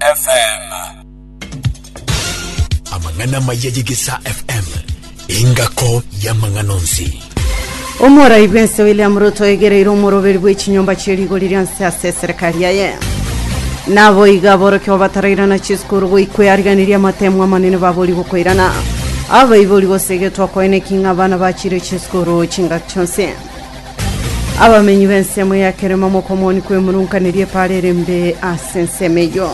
FM. Amang'ana amaya y'Egesaa FM, engako y'amang'ana onsi. Omorai bw'ense William Ruto oegereire omoroberi bw'echinyomba chie rigori ria nse ase eserekari yaye. Naboiga aborokigwa batarairana chisukuru goikoeariganiria amatemu amanene babori gokoirana. Abaibori gose egetwa koene ki ng'a abana bachire chisukuru chingaki chionsi. Abamenyi b'ensemo ya kerema mokomoni kw'emurunkaneri epaara ere mbe ase ensemo eyio.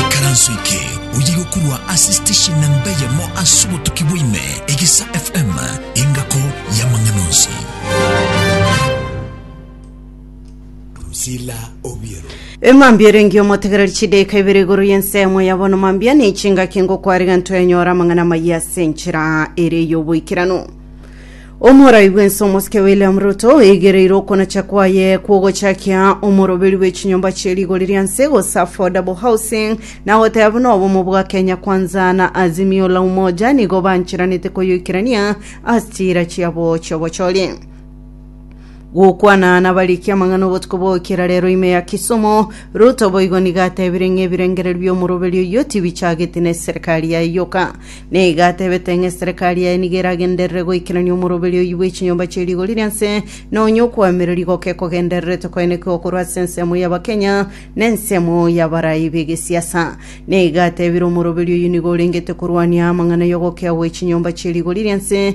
ikaranso eke oyige korwa ase station na mbe yamo ase obotuki bwaime egesa fm engako y'amang'ana onsi Drusilla Obiero. Emambia erengi omotegereri chidaika ibere igoro y'ensemo ya bono mambia ne chingaki ngokwarega ntoyanyora amang'ana amayia ase enchera ere y'oboikeranu omorai bwense omosike william ruto eigereire okonacha kwaye kwogochakia omoroberi bw'echinyomba chie rigori ria nse gose affordable housing na goteba buna obomo bwa kenya kwanza na azimio la umoja nigo bancheranete koyoikerania ase chiira chiabo chiobochori Gokwana nabarikie amang'ana obotuko bw'ogokera rero ime ya kisomo, Ruto boigo nigo atebire ng'a ebirengererio bi'omoroberi oyio tibichageti na eserekari yaye yoka. Neigo atebete ng'a eserekari yaye nigo eragenderere goikerania omoroberi oyio bw'echinyomba chie rigori ria nse, na onye okoamereri goke kogendererete koenekigwa korwa ase ensemo y'Abakenya na ensemo y'abarai b'egesiasa. Neigo atebire omoroberi oyio nigo orengete korwania amang'ana y'ogokea gwe chinyomba chie rigori ria nse,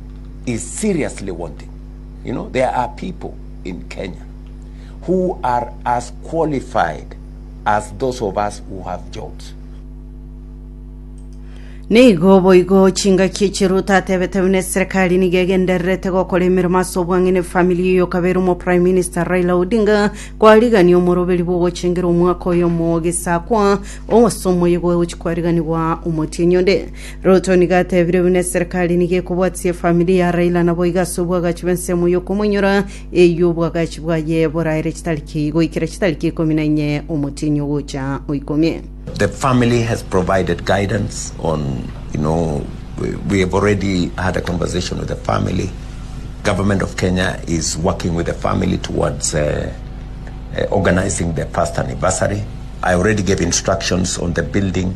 is seriously wanting. You know, there are people in Kenya who are as qualified as those of us who have jobs. Nigo boigo chingaki echiruta atebete buna eserekari nigo egendererete gokora emeremo ase obwang'ene famili eyo kabere omo prime minister raila odinga kwarigania omoroberi bw'ogochengera omwaka oyomo ogesakwa ogosa omoyego ogochi kwariganigwa omotienyi onde Ruto nigo atebire buna eserekari nigo ekobwatisia efamiri ya Raila naboigo ase obwagachi bw'ensemo y'okomoinyora eywo obwagachi bwaye boraere chitariki goikera chitariki ikomi na inye omotienyi ogocha oikomie. The family has provided guidance on, you know, we, we have already had a conversation with the family. Government of Kenya is working with the family towards uh, uh, organizing the first anniversary. I already gave instructions on the building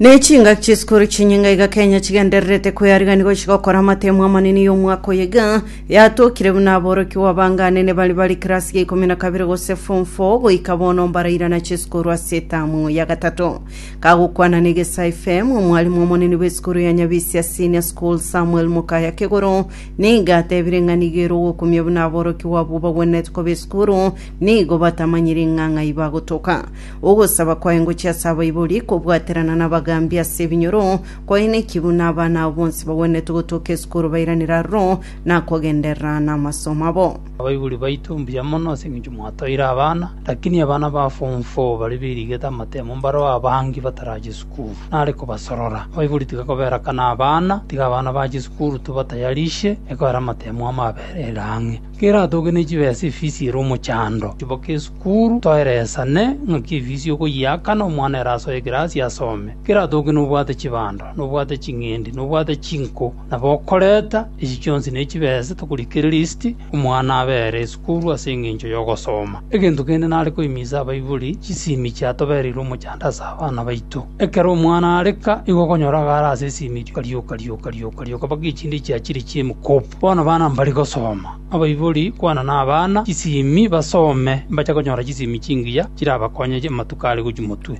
Ne chingaki chisukuru chinyinga iga Kenya chigendererete kwearigania gochia gokora amatemo amanene y'omwaka oyo iga yatokire buna aborokigwa abanganene bari bari kirasi ya ikomi na kabere gose form 4 goika bono mbarairana chisukuru ase etamu ya gatato kagokwana na egesa fm omwarimu omonene bw'esukuru ya nyabisia senior school samuel mokaya kegoro niga atebire ng'a nigo ere ogokumia buna aborokigwa abwo bagwenerete koba esukuru nigo batamanyire ing'ang'ai bagotoka Ogosaba kwaye ngochia ase abaibori, kobwaterana nabagaambi ase ebinyoro, kwaye neki buna abana abo bonsi bagwenerete gotoka esukuru bairanire aroro, na kogenderera namasomo abo. Abaibori baito mbuya mono ase engencho mwatoire abana, lakini abana ba form four baria berigete amatemo mbareo abange batarache sukuru, nare kobasorora. Abaibori tiga koberakana abana, tiga abana bache sukuru tobatayarishe, ekoera amatemo amo aberere ang'e. Keratoke ne chibesa efisi ere omochando, chiboke esukuru, toeresane ng'aki efisi okoyeaka na omwana ere asoe ekirasi asome. Keratoke nobwate chibando, nobwate ching'endi, nobwate chinko, na bokoreta, echi chionsi ne chibesa tokorikereria esiti omwana abe ere esukuru ase engencho y'ogosoma. Egento kende nare koimisa abaibori, chisimi chiatobereire omochando ase abana baito. Ekero omwana areka, igo okonyora agare ase esimi rioka rioka rioka rioka rioka mpaka echinde chiachire chi'emokopo. Bono bana mbare gosoma, abaibori kwana nabana chisimi basome, mbache konyora chisimi chingiya chirabakonye amatuko are gochia motwe.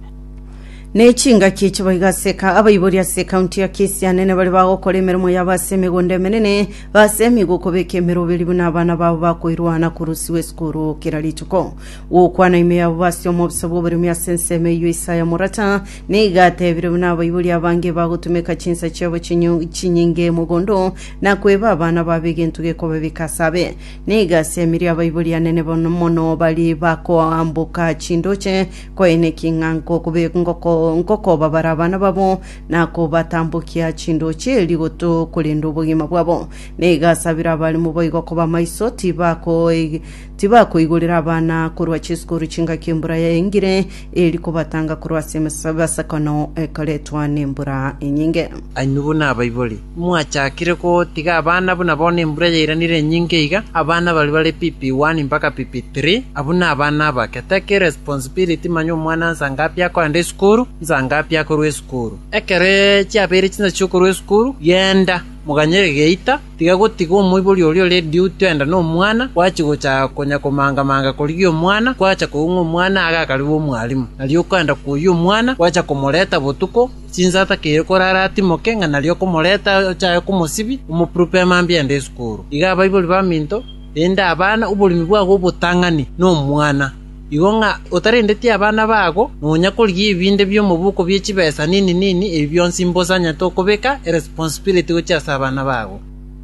Ne chingaki echi boigo ase eka abaibori ase ekaunti ya Kisianene bare bagokora emeremo yabo ase emegondo emenene, basemigwe okobeka emeroberi buna abana babo bakoirwana korusigwa esukuru kera rituko. Gokwana ime yabo base omobisa bw'oboremi ase ensemo eyio Isaya Morata nigo atebire buna abaibori abange bagotumeka chinsa chiabo chinyo- chinyinge mogondo na kweba abana babo egento gekoba bikasabe. Nigo ase emerio abaibori anene bono mono baria bakoamboka chindoche koenekia ng'a nkokobe- ngoko- ngokobabara abana babo, na kobatambokia chindoche erio goto korenda obogima bwabo. Nigo asabire abarimo boigo koba maiso, tibakoi- tibakoigorera abana korwa chisukuru chingaki embura yaengire, eri kobatanga korwa ase emes- emesakono ekoretwa nembura enyinge. Ayio buna abaibori Mwachakire gotiga abana buna bono embura yairanire enyinge iga, abana baria bare PP 1 mpaka PP 3, abwo nabana abake, take responsibility manya omwana nsa ngapi akoenda esukuru, nsa ngapi akorwa esukuru. Ekero chiabeire chinsa chiokorwa esukuru, genda, moganyere geita, tiga gotiga omoibori oria ore duty enda nomwana, gwachi gocha konya komanga manga korigia omwana, gwacha koigwa ng'a omwana agakaribe omwalimu, nario okoenda koyia omwana, gwacha komoreta botuko, Chinsata keire kore are atimoke ng'a nario okomoreta ochae komosibia, omokurupe amambia ende esukuru. Iga abaibori baminto, rende abana, oboremi bwabo obotang'ani nomwana. Igo ng'a otarendeti abana babo, nonya korigia ebinde bi'omoboko bie chibesa nini nini, ebi bionsi mbosa anyete okobeka eresponsibility gochia ase abana babo.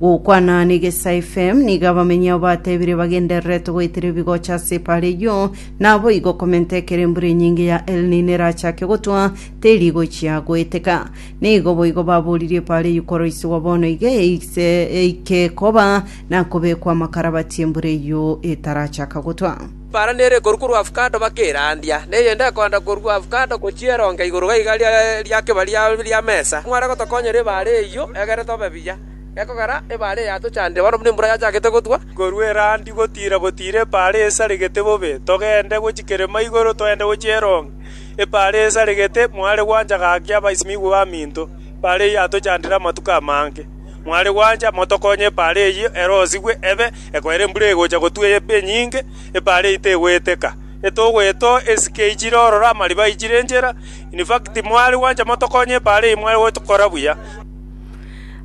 Gokwana negesae FM, nigo abamenyao batebire bagendererete goetera ebigocha ase epaara eyio, naboigo komenta ekero embura enyinge ya El Nino erachake gotwa, teri gochia goeteka. Nigo boigo baboririe epaara eyio koroisigwa bono iga eise eike koba na kobekwa amakarabati embura eyio etarachaka gotwa. Baara nere ekorwa korwa avocado bakerandia, na eyende ekoanda korwa avocado gochia eronge igoro gaiga ria kebaria ria mesa. Mware gotokonyera ebaare eyio egere tobe buya. Gekogera ebaare eye yatochandire bono buna embura yachakete gotwa. Korwa erandi gotiira gotiira ebaare esaregete bobe, togende gochia kerema igoro toende gochia eronge. Ebaare esaregete, mware gwancha gaki abaisimigwa baminto. Ebaare eyio yatochandire amatuko amange. Mware gwancha motokonye ebaare eyio ere osigwe ebe. Ekoera embura egocha gotwa epe enyinge, ebaare eye tegoeteka. Etogo eto esike eichire ororo amariba aichire enchera, in fact mware gwancha motokonye ebaare eye mware gotokora buya.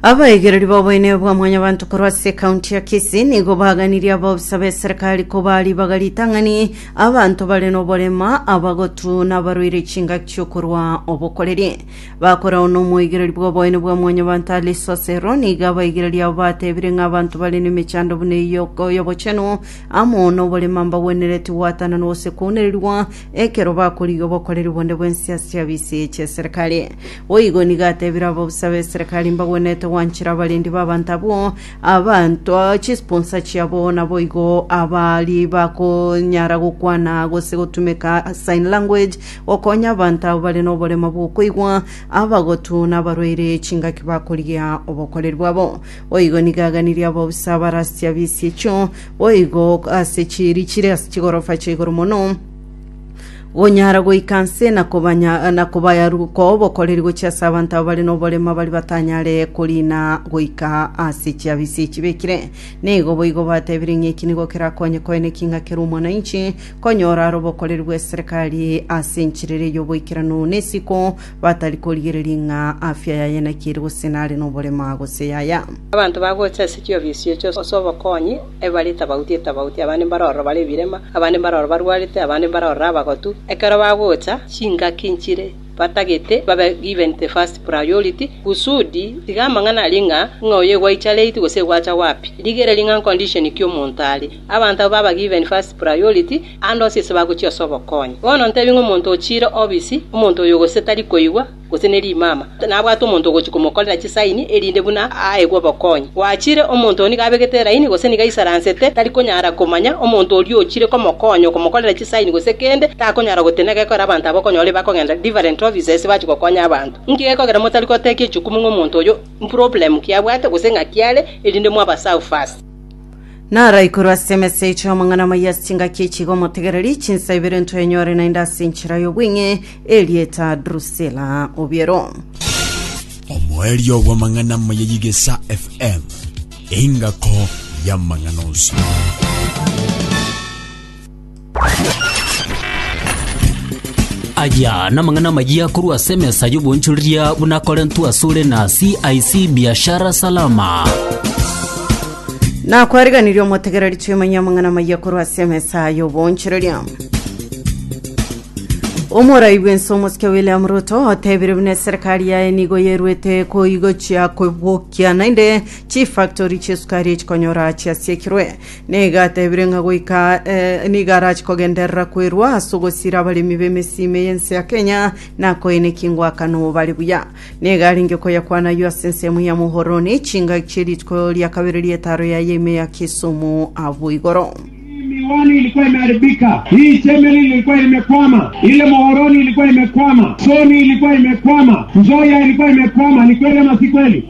Abaigereri b'oboineyo bwa Mwanyabanto korwa ase ekaunti ya Kisii nigo baganirie abaofisa b'eserekari kobaa ribaga ritang'ani abanto bare noborema, abagotu, nabarwaire chingaki chi'okorwa obokoreri. Bakorao nomoigereria bw'oboene bwa mwanyabanto are sasero, nigo abaigereria abo batebire ng'a abanto bare nemechando buna eyio y'obochenu amo noborema mbagwenereti gwatananwa gose kwaunererigwa ekero bakorigia obokoreri bonde bw'ense ase abisi chi'eserekari. Boigo nigo atebire ababusa b'eserekari mbagwenerete gwanchera abarendi b'abanto abwo abanto chisponsa chiabo naboigo abari bakonyara gokwana gose gotumeka sign language Okonye abanto abo bare noborema bw'okoigwa, abagotu, na abarwaire chingaki bakorigia obokoreri bwabo. Boigo nigo aganirie abo bonsi abarasia bise echio boigo ase chieri chire ase chigorofa chia igoro mono, gonyara goika nse na kobanya na kobayaruka obokoreri gochia ase abanto abo bare noborema baria batanyare koriina goika ase chiabisa echi bekire. Nigo boigo batebirie ng'a eki nigo kerakonye koeneki ng'a kera omwananchi konyora robokoreri bw'eserekari ase enchiriri y'oboikeranu na esiko, batari korigereria ng'a afya yaye naki ere gose nare noborema gose yaya. Abanto bagocha ase chiofisi echo ase obokonyi, ebari etabauti etabauti, abande mbare ororo bare ebirema, abande mbare ororo barwarete, abande mbare ororo abagotu. Ekero bagocha, chingaki nchire batagete babe given the first priority, kusudi tiga amang'ana aria ng'a, ng'a oyo egwaicha late gose egwacha wapi. Rigereria ng'a condition ki omonto are. Abanto abwo baba given first priority ande onsi ase bagochia ase obokonyi. Bono ntebie ng'a omonto ochiire obisi, omonto oyo gose tari koigwa, gose ne rimama, nabwate omonto ogochia komokorera chisaini erinde buna aegwe obokonyi. Gwachiire, omonto oyo nigo abegete elaini gose nigo aisaransete, tari konyara komanya, omonto oria ochiire komokonya okomokorera chisaini gose kende, takonyara gotenena gekogera abanto abwo okonyora bakogenda different office ase bachia gokonya abanto. Inki gekogera motari gotekia echukumu ng'a omonto oyo mproblem ki abwate gose ng'aki are erinde mwabaserve first. Naraikorwe ase emesegi chi'omong'ana omoyia ase chingaki echi iga omotegereri, chinsa ibere ntwenyore naende ase enchera y'obweng'e erieta Drusila. Obiero. Omoerio bw'amang'ana amaya y'Igesa FM, engako y'amang'ana onsi. Aya namang'ana amayia korwa ase emesa y'obonchoreria buna akorentwe asore na CIC Biashara Salama. nakwariganirie omotegereri twimanye amang'ana maiya korwa ase emesa y'obonchereria omorai bwense omosike william ruto otebire buna eserikari yaye nigo yerwete koigochia kobokia naende chifactori chiesukari echikonyora chiasiekirwe Nigo atebire ng'a goika aa eh, nigo arache kogenderera kwerwa ase ogosira abaremi b'emesima ey'ense ya Kenya na koina ekingwakano bare buya. Nigo arenge koyakwana ayio ase ensemo ya Muhoroni, chingaki chie rituko ria kabere ri'etaro yaye ime ya Kisumu abwo igoro. miwani ilikuwa imeharibika, hii chemeli ilikuwa imekwama, ile mohoroni ilikuwa imekwama, soni ilikuwa imekwama, nzoya ilikuwa imekwama. Ni kweli ama si kweli?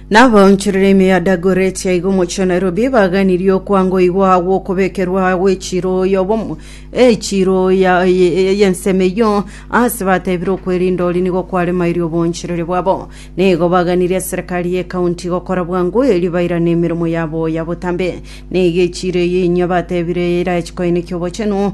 Na abaonchoreri ime ya Dagoretti aiga omochie o Nairobi baganirie okwangoigwa gw'okobekerwa gw'echiiro y'obomo echiiro ya- ye- y'ensemo eyio, aase batebire okwerinda oria nigo kwaremairie oboonchoreri bwabo. Nigo baganirie eserekari y'ekaunti gokora bwango erio bairane emeremo yabo ya botambe. Nigo echiiro eyio inyia batebire erachi koenekia obochenu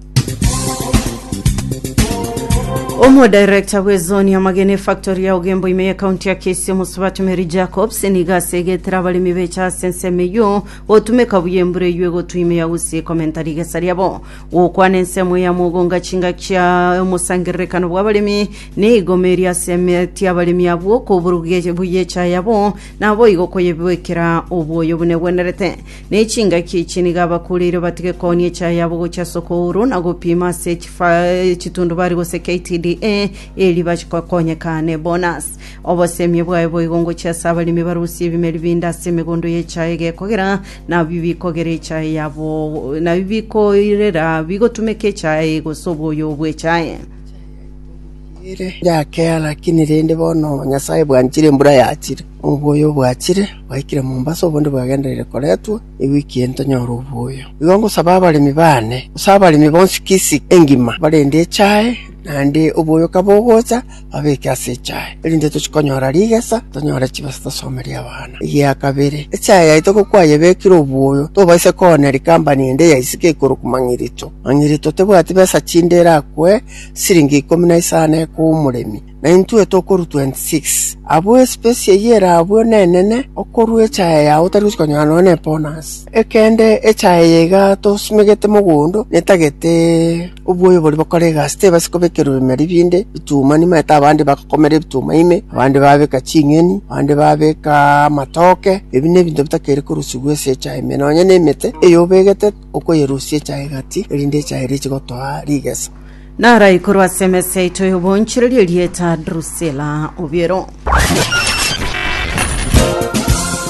Omodirector bw'ezoni y'amagena efactori ya Ugembo ime y'ekaunti ya Kisii omosubati Mary Jacobs nigo ase egetera abaremi becha ase ensemo eyio gotumeka buya embura eyio egotwa ime ya Gusii komenta rigesa riabo. Gokwana ensemo eye amo ogonga chinga chia omosangererekano bw'abaremi nigo meeri ase emeti y'abaremi abwo koburugia buya echae yabo naboigo koyebekera obwoyo buna egwenerete. Ne chingaki echi nigo abakuureirwe batige koonia echaye yabo gochia ase okouru na gopiima ase echifa- echitundubari gose KTDA eeri bachikwe koonyeka ne bonus. Obosemie bwaye boigo ngochia ase abaremi barusie ebimeri binde ase emegondo y'echaye egekogera, nabio bikogera echaye yabo, nabio bikoirera bigotumeka echaye gose obwoyo bw'echaye. Yakeha, lakini rende bono Nyasae bwanchire embura yachire, na oboyo obwachire bwaikire Mombasa, obondi bwagendereire koretwa, ewiki eye ntonyore oboyo. Igo ngosaba abaremi baane, gose abaremi bonsi kisii engima, abarende echae, naende oboyo kabogocha, babeke ase echae, erinde tochie konyora rigesa, tonyore chibesa tosomerie abana. Egia kabere, echae yaito gokwayebekire oboyo, tobaisa koonera ikampani ende ya isiko ekorokwa Mang'irito. Onye rituo tebwati besa chinde erakwe siringi ikomi na isano ekoa omoremi, na intwe tokorua 26, abwo esipesi eyio erabwo nenene okorua echaye yao otari gochia konyora nonya n'ebonus. Ekende echaye eye iga tosimegete mogondo netagete oboyo boria bokora egasi, tebasi kobekerwa ebimeri binde bituma nimanyete abande bagokomera ebituma ime, abande babeka ching'eni, abande babeka amatoke, ebi nebinto bitakeri korusigwa ase echaye ime, nonya nemete eyobegete okoyerusia echa egati, erinde echa eria eche gotoa rigeso. Narai korwa ase emesa yaito y'obonchereri erieta Drusila obiero.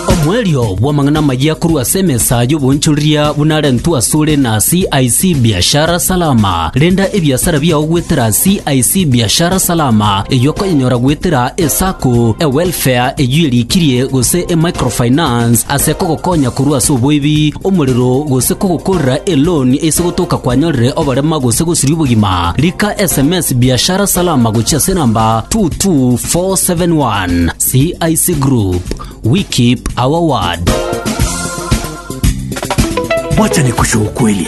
Omoerio bw'amang'ana amayia korwa ase emesa y'obonchoreria buna arentwe asore na CIC Biashara Salama. Renda ebiasara biao goetera CIC Biashara Salama, eyio okoyenyora goetera eSacco, eWelfare eyio erikirie, gose eMicrofinance ase kogokonya korwa ase oboibi, omorero, gose kogokorera eloan ase gotoka kwanyorire oborema gose gosiria obogima. Rika sms Biashara Salama gochia ase enamba 22471. CIC Group, we keep our word. Wacha nikushukwe ukweli.